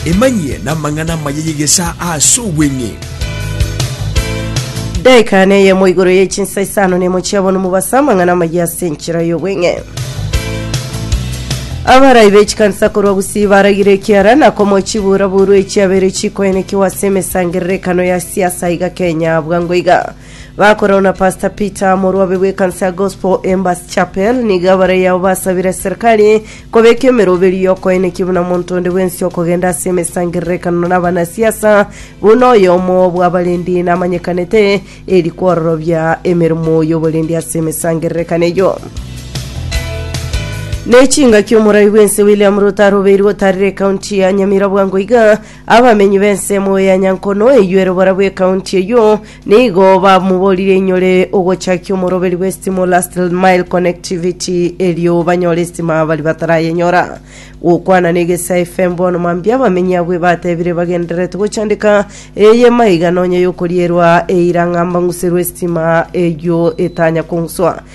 Emanyie namang'ana amaya y'egesaa ase obweng'e. Daika neyemo igoro ye chinsa isano nemo chia bono mobasa amang'ana amaya ase enchera y'obweng'e. Abarai bechikanisa korwa gusii baragire ekiara na komo chibura buru echiabere chikoenekiwa ase emesangererekano ya siasa iga Kenya bwango iga. Bakorana na Pastor Peter, omorwabe bw'ekansa ya Gospel Embers Chapel, nigo abarei abo basabire serikali kobeka emeroberio y'okoenekia buna monto onde bwensi okogenda ase emesangererekano n'abanasiasa buna oyomo bw'abarendi namanyekanete eri kwororobia emeremo y'oborendi ase emesangererekano eyo. N'echingaki omorai bw'ense William Ruto arobeirwe otarire ekaunti ya Nyamira bwango iga Abamenyi b'ensemo ya Nyankono eyio ere oborabwo ekaunti eyio, nigo bamoborire inyore ogochakia omoroberi bwe stima o Last Mile Connectivity erio banyore estima bari batarayenyora. Gokwana na Egesaa FM bono mambia abamenyi abwo ebatebire bagendererete gochandeka eye maiga nonya yokorierwa eira ng'a mbang'userwe estima eyio etanya kong'uswa.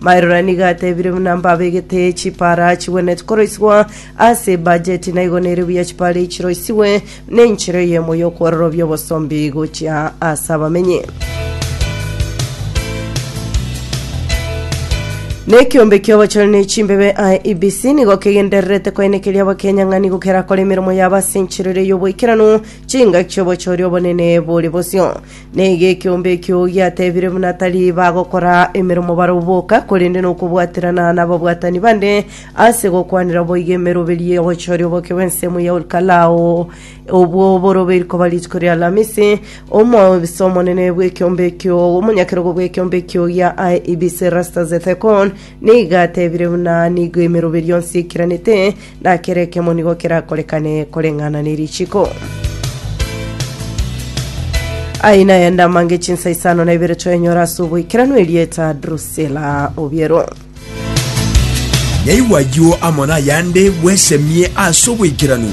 Maerora nigo atebire buna mbabegete chipara chigwenereti koroisigwa ase ebajeti naigo nere buya chipara echi chiroisigwe nenchera eyemo y'okwororobia obosombi gochia ase abamenyi. Nekiombe ki'obochore ne chimbebe IEBC nigo kegendererete koenekeria abakenya ng'a nigo kerakore emeremo yabo ase enchera ere y'oboikeranu chingaki chi'obochori obonene bore bosio. Nigo ekeombe ekio giatebire buna tari bagokora emeromo barabwo boka, korende nokobwaterana nababwatani bande ase gokwanera boigo emeroberio y'ogochoria oboke bw'ensemo ya Olkalao. Obwo boroberi koba rituko ria Alamisi, omobisa omonene bw'ekeombe ekio, omonyakerogo bw'ekeombe ekio gia IEBC Erastus Ethekon, nigo atebire buna nigo emeroberio yonsi eikiranete Na kera ekemo nigo kerakorekane koreng'ana ne richiko. Aye naye ndamange chinsa isano na ibere twenyora ase oboikeranu erieta Drusilla Obiero. Nyaigwa ayio amo nayande bwesemie ase oboikeranu.